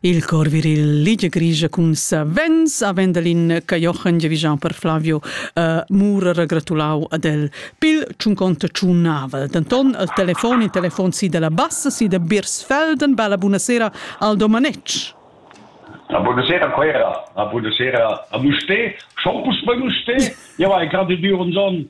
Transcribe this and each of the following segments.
Il cor viril Ligia Grischa cun savens a Vendelin Cajochen giavischan per Flavio uh, Mura regratulau ad el pil tschunconta tschunnavel. Denton al telefon in telefon si della Bassa, si da Birsfelden. Bella buonasera al Domanetsch. La buonasera Quera, la buonasera a Musté, schon pus bei Musté. Ja war gerade Dürenson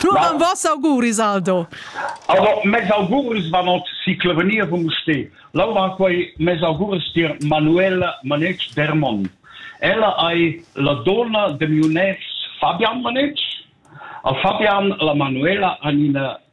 Turan vos auguris, Aldo. Aber mes augurs van ot si clevenir vom ste. Laura quei mes augurs dir Manuela Manetsch Dermon. Ella ei la donna de miu nex Fabian Manetsch. A Fabian la Manuela an ina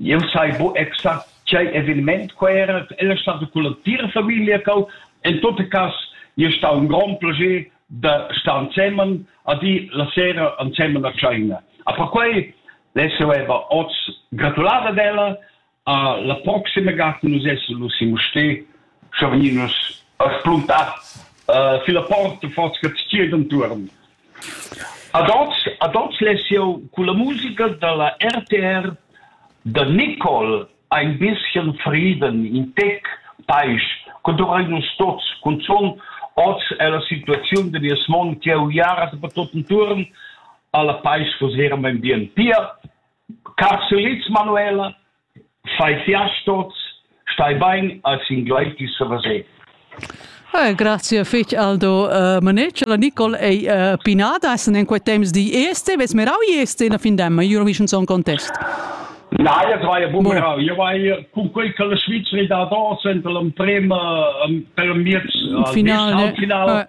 Jeu sai buc exact tgei eveniment quei era. El è stada culla tira famiglia cheu. En tot cass ei stau in grond plascher da star ensemen a dir la sera ensemen a tscheina. A perquei less'jeu era oz gratular ad ella. A la proxima gata nus essan lu sin Mustér sche vegnin nus a spluntar uh, fila porta forza che tschiet entuorn. Ad hoz ha dot sessiun culla musica da la RTR da Nicole Ein bisschen Frieden, in tec paisch, co dovrei nus tots, cunzun hoz è la situaziun da nies mond che ha uiara dapertut entuorn alla paisch vos era mein bien. Pia Carselitz, Manuela, fai fiast hoz, stai bain, als ingluaitis a vaser. Hey, grazie fich Aldo uh, Manetsch. La Nicole ei uh, pinada essen in quei temps di este, ves merau este na fin demma, io mission son contest. Na, io vai a bumerau, io vai con quei che la Svizzera da dos ent l'emprema per miez finale, finale.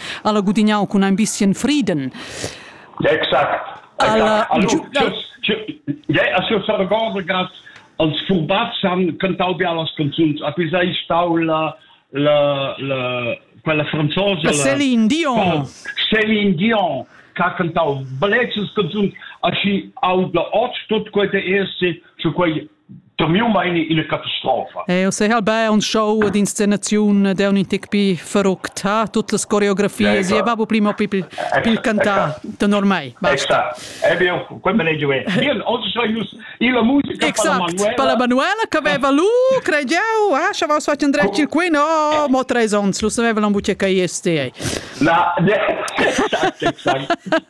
al ha gudignau cun ein bisschen Frieden. Exakt. Alla, Aschio s'arregordas als furbazan cantau be las canzuns, a pisa ei stau la la la quella franzosa la Céline Dion Céline Dion ha cantau blezzes canzuns aschi au da ot tot quei de esse zu quei Per miu meini ina catastrofa. Eh, o sei albè un show ed inscenaziun d'eun in tec pi feruct, ha tut las coreografias, e babu prima pi pil, pil cantar, tenor mei. È sta, è bien, quel me ne giue. Bien, oggi so ius, ila musica Exact, per la Manuela che aveva lu, credo, eh, ci aveva fatto andare il qui, no, mo tre ons, lo sapeva la bucca che io stei. La, exact, exact.